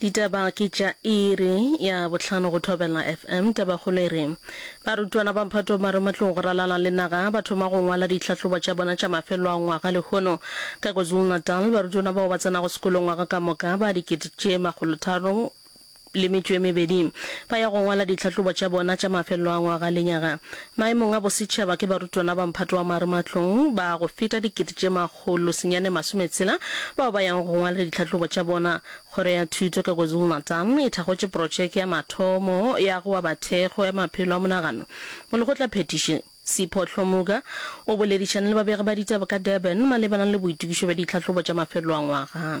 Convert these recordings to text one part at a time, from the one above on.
Ditaba ke tša iri ya bohlano go Thobela FM. Tabakgolo e re, Barutwana ba Mphato ba re matlong go ralala le naga ba thoma go ngwala ditlhahlobo tša bona tša mafelo a ngwaga lehono. Ka KwaZulu-Natal, barutwana bao ba tsenago sekolo ngwaga ka moka ba dikete tše makgolo tharo le metšo e mebedi ba ya go ngwala ditlhahlobo tša bona tša mafelo a ngwaga lenyaga maemong a bosetšhaba ke barutwana ba Mphato wa Marematlong ba go feta dikete tše makgolo senyane masome tshela bao ba yago go ngwalele ditlhahlobo tša bona. Kgoro ya Thuto ka KwaZulu-Natal e thakgotše protšeke ya mathomo ya go aba thekgo ya maphelo a monagano go lekgotla phethiši. Sipho Hlomuka o boledišane le babegi ba ditaba ka Durban malebana le boitokišo bja ditlhahlobo tša mafelelo a ngwaga.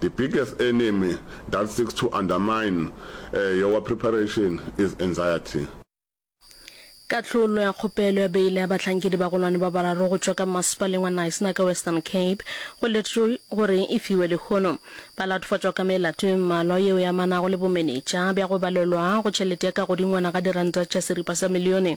The biggest enemy that seeks to undermine your preparation is anxiety. Kahlolo ya kgopelo ya beile ya bahlankedi ba gonwane ba bararo go tšwa ka Mmasepaleng wa Knysna ka Western Cape go letšwe gore e fiwe lehono. Ba latofatšwa ka melato e mmalwa yeo e amanago le bomenetša bja go balelwa go tšhelete ya kagodingwana ga diranta tša seripa sa milione.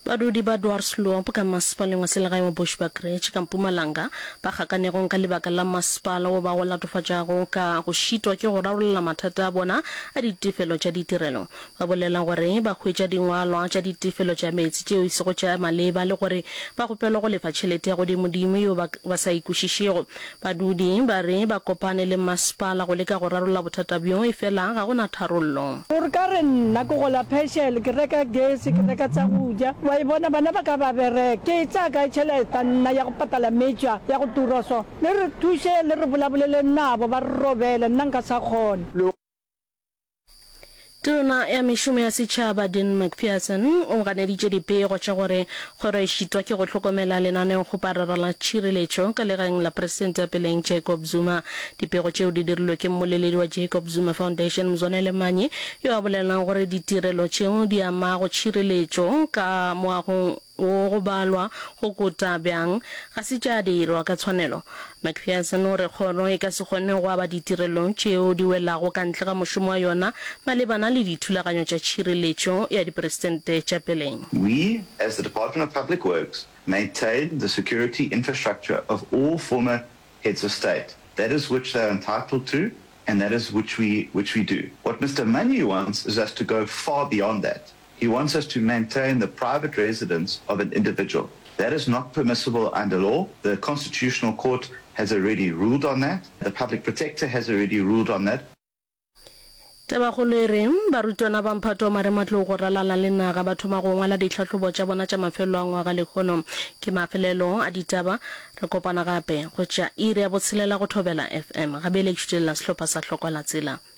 Badudi ba Dwarsloop ka masepaleng wa selegae wa Bushbuckridge ka Mpumalanga ba gakanegong ka lebaka la masepala wo ba go latofatšago ka go šitwa ke go rarolla mathata a bona a ditefelo tša ditirelo ba bolela gore ba hwetša dingwalwa tša ditefelo tša meetse tšeo e sego tša maleba le gore ba kgopelwa go lefa tšhelete ya godimodimo yeo ba sa e kwešišego Badudi ba re ba kopane le mmasepala go leka go rarolla bothata bjo efela ga go na tharollo. O re, Ka re nna ke gola Peshele, ke reka gese, ke reka tsa go ja, wa e bona, bana ba ka ba bereka. Ke e tsaya kae tšheleta nna ya go patala meetse a, ya go tura so? Le re thuše le re bolabolele nabo ba re robele, nna nka sa kgona. Tona ya Mešomo ya Setšhaba Dean McPherson o ganeditše dipego tša gore kgoro e šitwa ke go hlokomela lenaneo go parara la tšhireletšo ka legaeng la Presidente peleng Jacob Zuma. Dipego tšeo di dirilwe ke mmoleledi wa Jacob Zuma Foundation Mzwanele Manyi yo a bolelelang gore ditirelo tšeo di amago tšhireletšo ka moagong Go go balwa go kota bjang ga se tša dirwa ka tshwanelo. McPherson o re kgoro e ka se kgone go aba ditirelo tšeo di welago ka ntle ga mošomo wa yona malebana le dithulaganyo tša tšhireletšo ya diperesente tša peleng. We, as the Department of Public Works, maintain the security infrastructure of all former Heads of State. That is which they are entitled to and that is which we which we do. What Mister Manyi wants is us to go far beyond that. He wants us to maintain the private residence of an individual. That is not permissible under law. The Constitutional Court has already ruled on that. The Public Protector has already ruled on that. Tabakgolo e re, barutwana ba mphato wa marematlou go ralala le naga ba thoma go ngwala ditlhahlobo tša bona tša mafelelo a ngwaga lehono. Ke mafelelo a ditaba. Re kopana gape go tšea iri ya botshelela go thobela FM. Gabeletšo di lela sehlopha sa Hlokwalatsela.